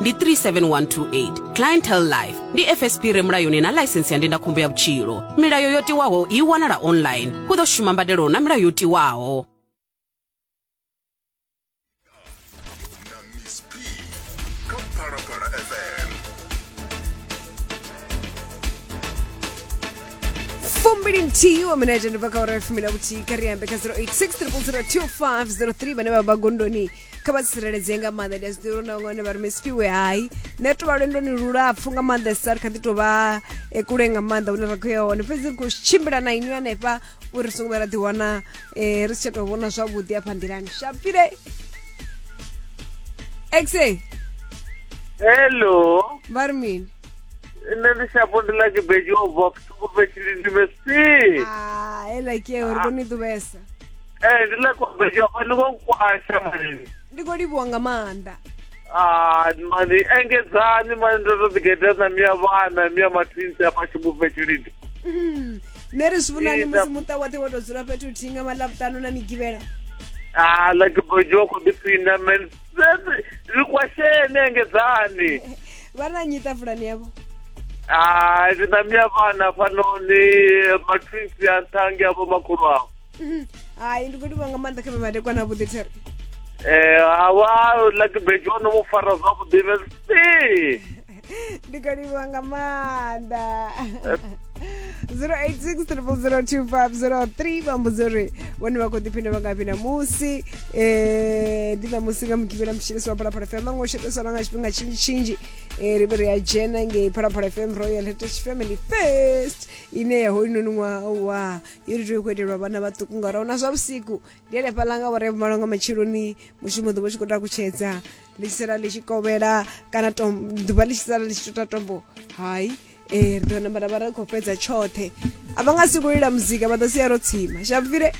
ndi 37128 clientele life ndi fsp re mulayoni na laisentsi ya ndindakhombo ya vhutshilo milayo yo tiwaho i wanala online hu ḓo shuma mbadelo na milayo yo tiwaho fumbili nthihi wa minete ndi pakaora ya fumi na vhuthihi kha ri ambe kha 086 300 2503 vhane vha vha gondoni kha vha tsireledzee nga maanḓa ndi a zwiḓivha uri na vhaṅwe vha ri mesifiwe hai nṋe to vha lwendoni lulapfu nga maanḓesa ri kha ḓi tou vha e kule nga maanḓa hune ra khou ya hone fhedzi ri khou tshimbila na inwi hanefha uri ri songo vha ra ḓiwana um ri si tsha tou vhona zwavhuḓi afha nḓilani shapile exe hello vha ri mini nṋe ndi shapo ndi lake beji o bva kutuku fhetshilindimesi ah, heḽa ke uri koni ḓuvhesa Eh, ndi ḽa kobedzwa fha ni khou kwasha mani. ndi khou livhuwa nga maanḓa Ah, mani engedzani mani ndo to ḓigeḓa na miya vhana, miya mathinsi afha tshibufhe tshilidi. Mhm. nṋe ri zwi vhonani Ee, musi nda- muṱa woṱhe wo to dzula fhethu huthihi nga maḽavhuṱanu na migivhela Ah, ḽa kobedzwa khou ḓi phina mani. Sese, ri kwasheni engedzani. vha na nnyi ṱafulani yavho Ah, ndi na miya vhana fhanoni, mathinsi a nthangi avho makhulu avho. hai ndi khou livhuwa nga maanḓa kha vhemadekwa na vhuḓi there eh awa like bejo no mu fara zwavhuḓi vesi ndi khou livhuwa nga maanḓa 0860002503 vha mbudza uri vhone vha khou ḓiphina vha ngafhi namusi um ndi ṋamusi nga mugivhela mutshilisi wa phalaphala fm vha ngo sheteselwa nga tshifhinga tshinzhi tshinzhi um ri vhe ri a dzhena ngei phalaphala fm royal heritage family first ine ya hoyunoni ṅwaha wa iri tea u khou itelwa vhana vhaṱuku ngauri ahuna zwa vhusiku ndi henefha ḽa nga vhore malo nga matsheloni mushumo ḓuvha tshi khou tou kutshedza ḽi tshi sala ḽi tshi kovhela kana ḓuvha ḽi tshi sala ḽi tshi tota tombo hai um ri ḓo namba ra vha ri khou fhedza tshoṱhe a vha nga si khou lila muzika vha ḓo sia ro tsima shabufile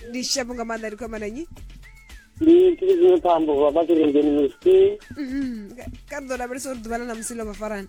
ndi shapo nga maanḓa ndi khou amba na nnyi ndi tshilidzine phambo vha vha tshirenzeni misi ka ḓo lavhelesa uri ḓuvha ḽa na musi ḽo vha farana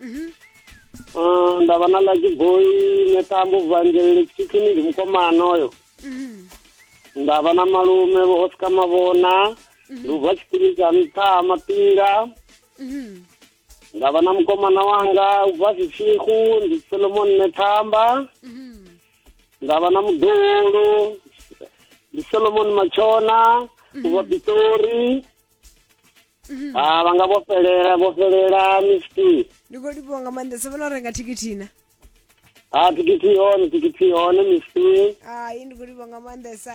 mhm. ah, nda vha na ḽa tshiboi neṱambo vangeleli tshikini ndi mukomana oyo mhm. nda vha na malume vho oscar mavhona mhm. lubva tshikini tsha nṱha mapinga nda vha na mukomana wanga u bva zwitshihu ndi solomon nethamba nda vha na muḓulu ndi solomon matshona u bva pitori ha vha nga vho fhelela vho fhelela miski ndi khou livhuwa nga maanḓa sa vhona u renga thikithi na ha thikithi i hone thikithi i hone miski hai ndi khou livhuwa nga maanḓesa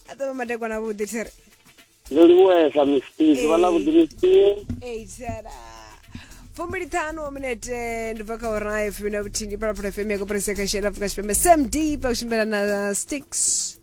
a ṱavha madekwana avhuḓi there ndo livhuwesa miski ḓuvha ḽa vhuḓi miski eitshela fumbiliṱhanu wa minete ndi bva kha ora ya fumi na vhuthihi ndi phalaphala fm ya koporasi ya kashela afrika tshipembe samd pa u tshimbila na sticks